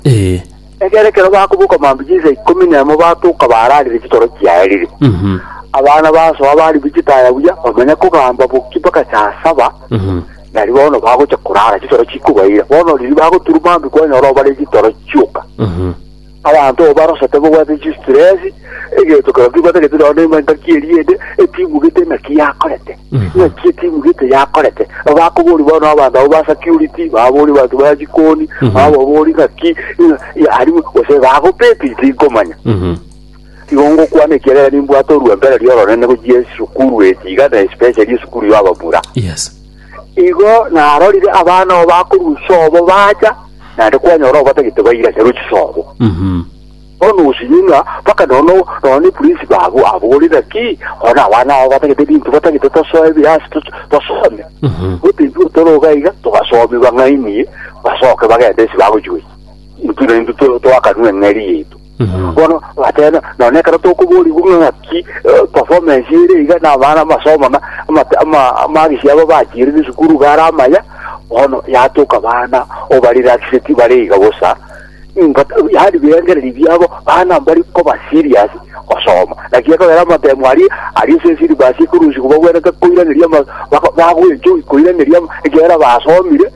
Ee. Ekiagera ekero bakoboka mambia chinsa ikomi na emo batoka baararire chitoro chiaerire. Mhm. Abana basoa bari bichitaya buya, bamanya kogamba boki mpaka saa saba, Mhm. nari bono bagocha korara chitoro chikobaira. Bono riria bagoturwa mambia kwanyora obare chitoro chioka. Mhm. Abanto oo barosete bogwete chistresi, Egento kero kebwatagete nao ne engaki eria ende etimu gete naki yakorete naki etimu gete yakorete abakobori bono abanto abo ba security babori abanto ba jikoni bababori naki yari gose bagopeti tinkomanya igo ngokwana ekiagera nimbwate orwembere rioronene gochia esukuru eti iga na especially esukuru ya ababura Yes. igo narorire abana abo bakorusia obo bacha naende kwanyora obo batagete baira charo chisobo Mhm. Bono osirie ng'a mpaka nono nonya neprinsi babo abore, Naki konya abana aba batagete ebinto batagete tosoe ebiya ase to- tosome? Gotenchwe tore iga iga, togasomie bang'ainie, basoke bagende ase bagochweria. Intwe naintwe to- toakanwe eng'eria yaito. Bono batebe, nonya ekero tokoborigwa ng'a ng'aki eh, performa ense ere iga na abana amasomo na amate- ama- amagisi abo bachirire esukuru iga are amaya, bono yatoka abana obarelaxeti bare iga bosa, Ningo yaani birengererio biabo bana mbari koba serious gosoma. Naki ekogera amatemo aria aria ase esyllabus ekurusia kobagwenerete koiraneria ama- bako- bagwenchwa koiraneria ama- ekiagera basomire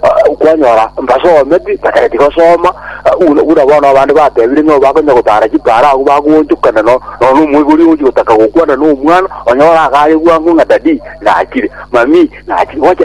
ah, kwanyora mbasometi batageti gosoma ah, buna buna bono abande batebire ng'a bakonya gotara chipara agwo bagoonchokana no- nonya omoibori ogochi gotaka gokwana na omwana onyora agare bwango ng'a daddy nachire, mami nachire, gocha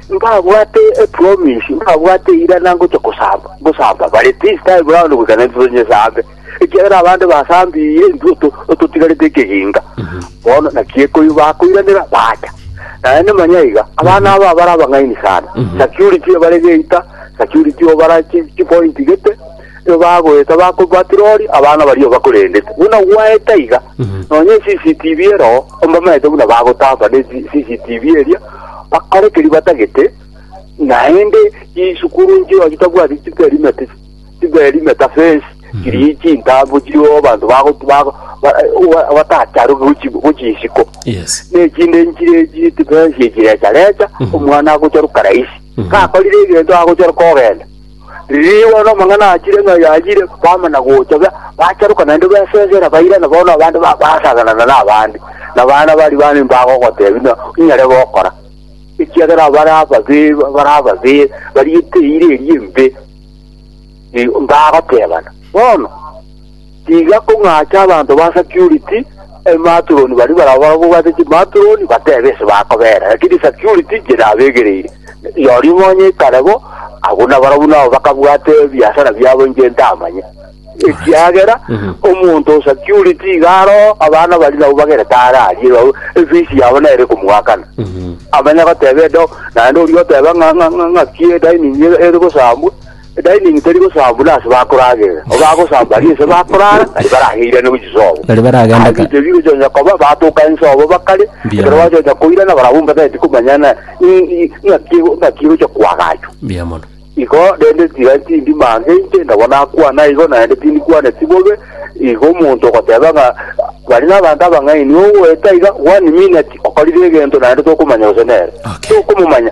Mbabwate epromise, mbabwate eirana ngocha kosamba, gosamba bare this time round goika na intwe tonyesambe, ekiagera abande basambirie intwe oto- ototigarete ekeginga. Bono naki ekoiyo bakoiranera bacha. Naende manya iga, abana aba bare abang'aini sana. Security ebare geita, security obara chi- chipoint gete, Nigo bagoeta bako- batirori abana baria bakorendete. Buna gwaeta iga, nonya eCCTV ero mbamaete buna bagotamba ne G- CCTV eria, bakore keria batagete, naende chisukuru chiao chitabwati chiperimete, chiperimete fence, chiria chintambo chiriogo abanto bago- bago- ba- ba- batacharuke gochi- gochia isiko. Yes. nechinde nchire chitipensi echirecharecha omwana agocharuka rahisi gakorire egento agocharuka ogenda Riiri bono amang'ana achire ng'a yayire bama na gocha, ba- bacharoka naende besesera, bairana bono abande ba- basaganana n'abande, na baana baria bane mbagogotebi na inyare gokora, ekiagera bare ababe bare ababe bariete eira eria embe, Ee, mbagotebana bono. Tiga kong'acha abanto ba security ematuroni baria barabwo babwate chimaturoni batebe ase bakobeera, lakini security inche nabegereire. Rirorio nonya ikare bo, abwo nabarabwo nabo bakabwate ebiasara biabo inche ntamanye. Ekiagera omonto o security iga aroo abana baria nabo bagerete are aria nabo efees yabo nere komwakana. Amanye goteba edo naende oria oteba ng'a ng'a ng'a ng'aki edining ere gosambwa Edainingi teri gosaba buna ase bakoragerera, obo agosaba baria ense bakorara, na tibaraheirane gochia sobo. Baria baragenda Aye ka- biito bigochoocha koba, batoka ense obo bakare, Mbuya ekero mono. bachoocha koirana barabwo mbatagete komanya na- i- i- ng'aki ego- ng'aki egochia koagachwa. Mbuya mono. Igo rende tiga tindi mansa inche, nabo nakwana igo, naende tindikwaneti bobe, igo omonto ogoteba ng'a bari nabanto abang'aini, ogoeta iga one minute okorire egento naende tokomanya gose nere. Okay. Tokomomanya.